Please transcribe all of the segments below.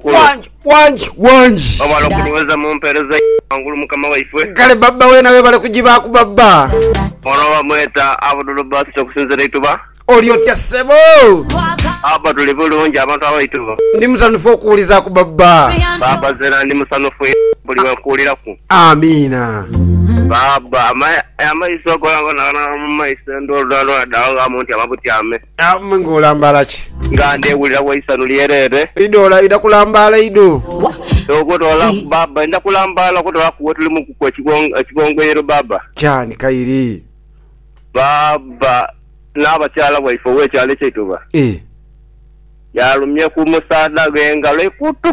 Wangi, wangi, wangi. Webale okuduweza mumpereza yo wangulu mukama waifwe. Kale baba wena webale kujibaaku baba. Ono bamweta Abdul Basit okusinzira eituba. Oli otya sebo? Baba tuli bulungi abantu abaituba. Ndi musanhufu okuwulizaaku baba. Baba zena ndi musanhufu inho buli wenkuwuliraku. Amiina. Baba amaiso goona goona ganaba mumaiso endhooludhoona dhoona daghamu nti amabutyame. Amm nga olambaala ki? Nga ndewulira wa eisanhu lyereere. Idho oidha kulambaala idho. Okwetolola ku baaba ndidha kulambaala. Okwetolola ku wetuli mu kuku ekigongoiro baaba. Kyani kairi. Baaba n'abakyala bwaife ow'ekyalo eky'eituba. Yalumye ku musaadha ghe engalo eikutu.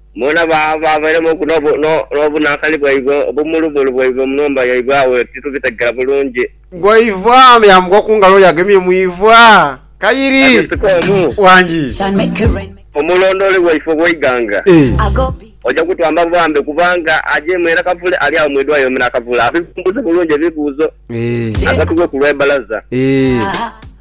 Mwena baabairemu n'obunakani bwaibwe obumulumulu bwaibwe mu nhumba yaibwe agho titubitegera bulungi. Gwaivwa me yaamukuwa ku ngalo y'agemye mu iivwa. Kayiri. Agesika omu. Wangi. Omulondooli waife ow'eighanga. E. Oja kutwamba bwambe kubanga aja imwe era kavule ali agho mu idwaliro me n'akavule abivumbuze bulungi ebibuuzo. E. Agatughe ku lw'ebbalaza. E.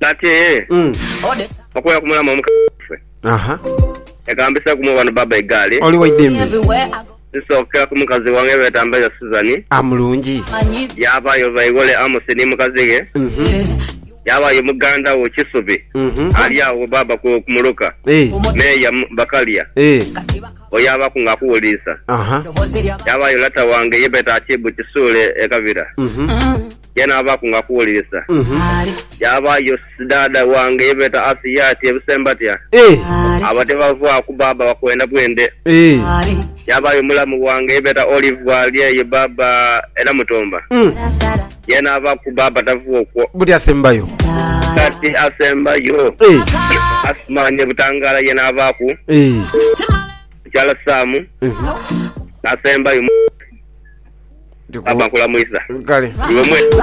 Kati Mm. okubeera ku mulamu omukazi waffe Aha. yagambisa gumu bano baba egaali Oli waidembe. zisookera ku mukazi wange beeta Mbaire Suzan A mulungi. yaabayo Baiwole Amosi ni mukazi ghe Mhm. yaabayo muganda wo Kisubi Mhm. ali agho baba ku ku muluka Eh. Meeya M- Bakalya Eh. bweyaabaku nga akuwuliisa Aha. yaabayo lata wange ye beeta Akiibu Kisuule e Kabira Mhm. yaanaabaaku nga akuwulirisa. Yaabaayo sidaadha wange ye beeta Asia ati, Ebise mbatya? Abo tibavaaku bbaabba bakwenda bwende. Yaabaayo mulamu wange ye beeta Olive ali eyo bbaabba e Namutumba. Yaanaabaaku bbaabba tava okwo. Buti asembayo? Kati asembayo Asumani e Butangala yaanaabaaku. Mukyala Sam n'asembayo, Mwami Papa nkulamwisa. Kale. Iwe mwene.